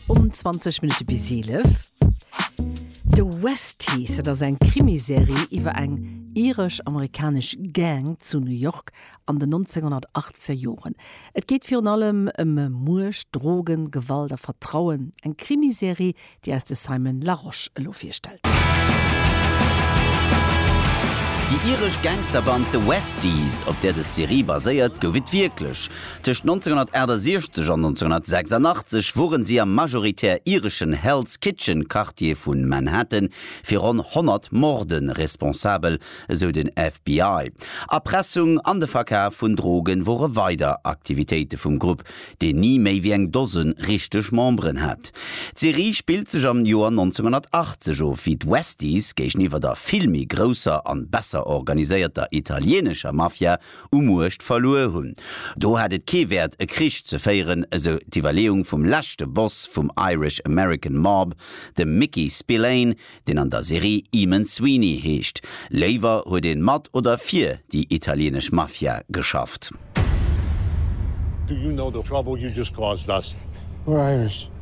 Um 20 Minutte bis 11 The Westies, dat ass eng Krimiserie iwwer eng iresch-amerikanesch Gang zu New York an den 1980er Joren. Et geet virun allem ëm Muecht, Drogen, Gewalt a Vertrauen. Eng Krimiserie, déi eis de Simon Larosche elo virstellt. Déi iresch Gangsterband The Westies, op där dës Serie baséiert, gouf et wierklech. Tëscht 1968 an 1986 wuaren si am majoritär ireschen Hell's Kitchen Quartier vun Manhattan fir ronn 100 Morden responsabel, esou den FBI. Erpressung an de Verkaf vun Drogen wore weider Aktivitéite vum Grupp, deen ni méi wéi eng Dosen richteg Memberen hat. D'Serie spillt sech am Joer 1980 of, wéi d'Westies géigeniwwer der vill méi grousser an besser organiséierter italienescher Mafia u Muecht verluer hunn. Do hat et kee Wäert e Krich ze féieren, esou d'Iwwerleeung vum leschte Boss vum Irish American Mob, dem Mickey Spillane, deen an der Serie Eamon Sweeney heescht. Léiwer huet een mat oder fir déi italieenesch Mafia geschafft. Do you know the trouble you just caused us? We're Irish.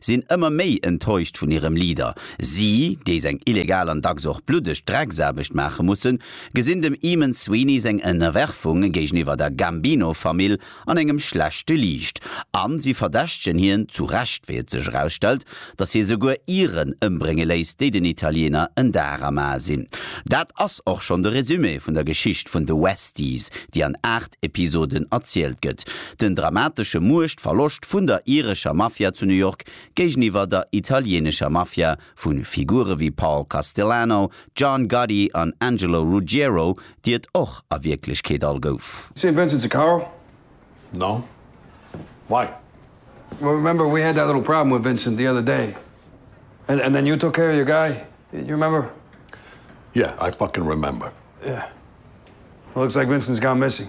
sinn ëmmer méi enttäuscht vun hirem Leader. Si, déi seng illegal an dacks och bluddeg Drecksaarbecht maache mussen, gesinn dem Eamon Sweeney seng Ënnerwerfung géigeniwwer der Gambino-Famill an engem schlechte Liicht a si verdächtegen hien, zu Recht, wéi et sech erausstellt, datt hie souguer Iren ëmbrénge léisst, déi den Italiener en Dar am Ae sinn. Dat ass och schonn de Resumé vun der Geschicht vun The Westies, déi an 8 Episoden erzielt gëtt. Den dramatesche Muechtverloscht vun der irescher Mafia zu New York géigeniwwer der italieenescher Mafia vu Figure wéi Paul Castellano, John Gotti an Angelo Ruggiero, déi et och a Wierklechkeet all gouf. Saint Vincent's a car? No. Why? Well remember we had that little problem with Vincent the other day and and then you took care of your guy, you remember? Yeah, I fucking remember. Yeah. Well looks like Vincent's gone missing.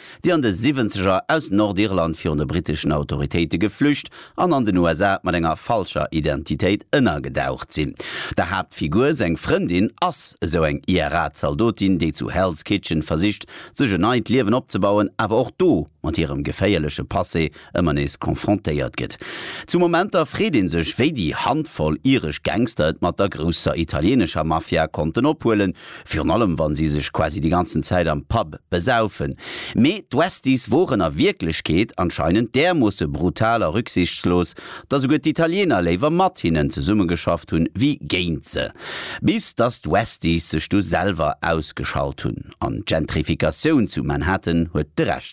déi an de Siwwenzeger aus Nordirland virun de briteschen Autoritéite geflücht an an den USA mat enger falscher Identitéit ënnergedaucht sinn. Der Haaptfigur seng Frëndin ass esou eng IRA-Zaldotin, déi zu Hell's Kitchen versicht, sech en neit Liewen opzebauen, awer och do mat hirem geféierleche Passé ëmmer nees confrontéiert gëtt. Zu Momenter freet ee sech, wéi déi Handvoll iresch Gangster et mat der grousser italienescher Mafia konnten ophuelen, virun allem wa si sech quasi déi ganzen Zäit am Pub besaufen. Mee d'Westies woren a Wierklechkeet anscheinend därmoosse brutal a rücksichtslos, datt souguer d'Italiener léiwer mat hinnen zesummegeschafft hunn, wéi géint se. Bis datt d'Westies sech du selwer ausgeschalt hunn. An d'Gentrifikatioun zu Manhattan huet de Rescht.